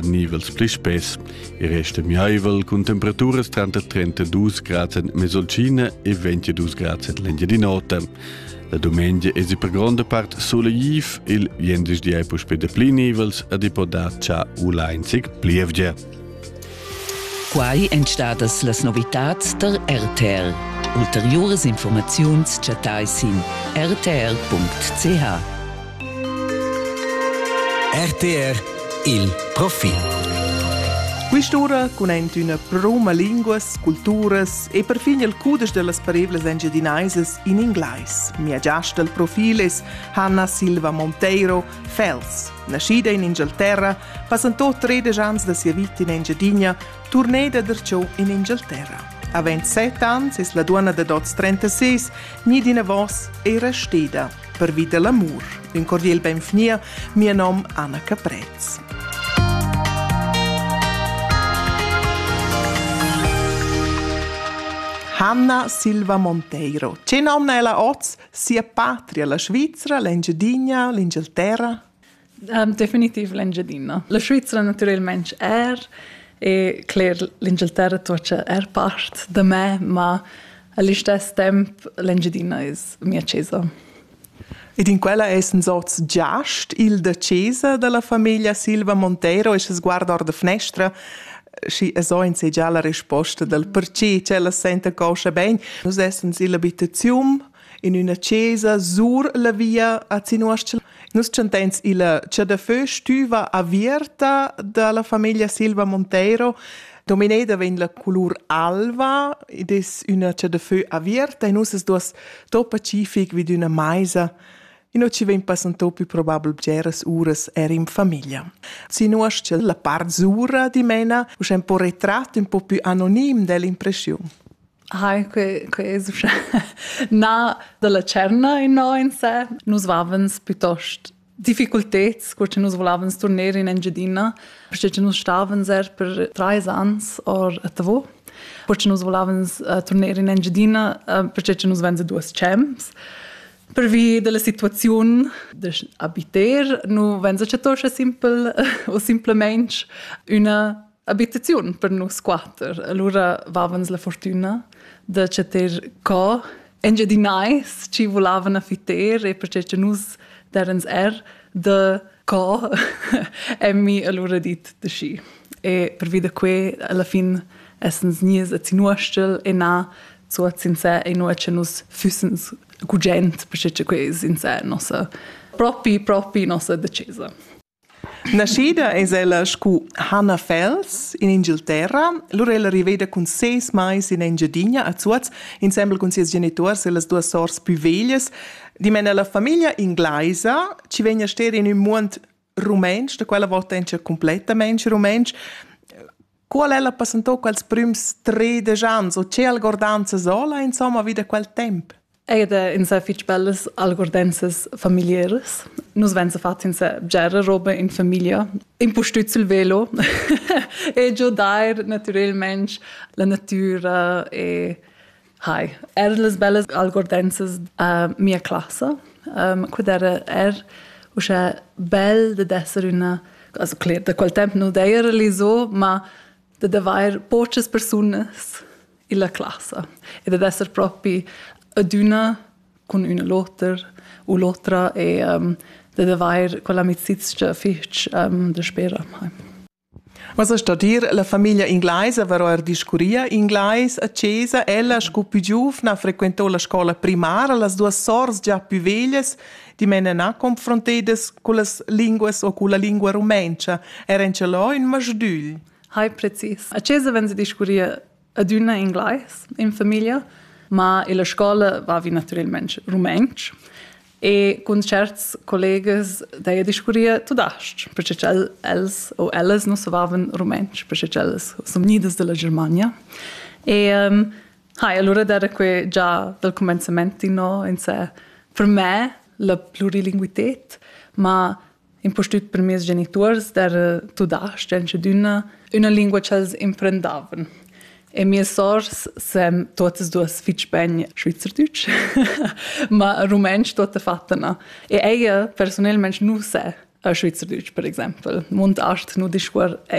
nivels pli spess e resta miaivel cun temperaturas tranter 32 grads en Mesolcina e 22 grads en l'Engiadin'Ota. La dumengia es per gronda part solegliv, il venderdi è puspè da pli nivels ed i può dar cha u lainzig plievgia. Quai èn stadas las novitads tar RTL. Ulteriuras informaziuns chattai sin rtl.ch. RTR il profil. Quest'ura cun üna proma linguas, culturas e perfin il cudesch dellas parevlas engiadinaisas in inglais. Mia giasta al profil es Hanna Silva Monteiro, Fels. Naschida in Inghilterra, passantò 13 ans da sia vita in Engiadina, turneda derciò in Inghilterra. Avend 7 ans es la duonna da 36 ni d'ina vos era steda. Pervi da l'amur, ün cordiel benvgnia mia nom Anna Caprez. Hanna Silva Monteiro. Ce nomna ella oz sia patria, la Svizzera, l'Engiadina, l'Inghilterra? Um, definitiv l'Engiadina. La Svizra naturalmente er e cler l'Inghilterra tuocha er part da me, ma all'istes temp l'Engiadina es mia chesa. Ed in quella essen sorts giast il da chesa dalla famiglia Silva Monteiro e se sguarda or da finestra și so insegea la risposta del perché cella senta coscia ben. Nus essen illa abitaziun in üna chesa sur la via a Zinuostl. Nus chantains illa Chadafö stüva avierta da la famiglia Silva Monteiro. Domineda vegn la colur alva ed es üna chadafö avierta e nus es duos topa cific vid üna maisa Ino ci vegn passantò più probabel bgeras uras er in famiglia. Sinuasce la part zura di mena, usch un po retratto, un po più anonim dell'impressiun. Hai, quei, quei es uschè na dalla tscherna innò in sé. Nus vavens piuttost difficulteds, cur che nus volevans turner in Engiadina, perché che nus stavens er per trais ans or a Tavò. Cur che nus volevans uh, turner in Engiadina, uh, perché che nus venza duas champs. Pervi della situaziun da abiter, nu venza che toscha simpel o simplemente una abitaziun per nus quater. Allora vavans la fortuna da chatter co engiadinai ci volavan a fiter e perché che nus derens er da co emmi allora dit de schi. E per vida que alla fin essens nies a zinuostel e na zu a sincer e no che nus fussens gugent perché che que sincer nossa propi propi nossa decesa. Naschida es ella scu Hannah Fels in Inghilterra, lura ella riveda cun ses mais in Engiadina a Zuoz insembel cun sias genituors e las duas sors pü veglias, dimena ella famiglia inglaisa chi vegn a ster in ün muond rumentsch, da quella vota in cha cumplettamaing rumentsch, Qual ella passentò quels prüms tredisch ans o che algordanzas hola insomma vi da quel temp? Eir da insà fich bellas algordenzas familieras. Nus venza fats insà bgera roba in famiglia, impustüt sül velo e giudair natürelmaing la natüra e Hi, er las bellas algordenzas a mia classa. Um, quid era er uschè bel da d'esser üna, also cler, da quel temp nu d'eira l'iso, ma da d'avair pochas persunas illa classa e da d'esser propi adüna cun üna l'oter u l'otra e um, da d'avair quell'amicizia fich um, da spera. Hi. Massa sto dir, la famiglia inglaisa va ora discurria inglais a chesa, ella sco pü giuvna frequentò la scoula primara, las duas sours già pü veglias, dimena na confrontedas cullas linguas o culla lingua rumentscha, era in chelò ün masdügl. Hai precis. A chesa vegn discurria adüna inglais in famiglia, ma illa scoula vavi natüralmaing rumantsch e cun tscherts collegas d'heja discurria tudas-ch, perche ch'el els o ellas nu savavan rumantsch, perche ch'ellas sun gnidas da la Germania. E um, ha, e alura d'eira que già dal cumenzament inno in sè. Per me la plurilinguited, ma impustüt per meis genituors d'eira tudasch dschedüna üna lingua ch'els imprendavan. E mias sors san tuottas duos fich bain schweizerdeutsch, ma rumantsch tuottafattina. E ella persunelmaing nu sa schweizerdeutsch, per exaimpel. Munt ast nu discuor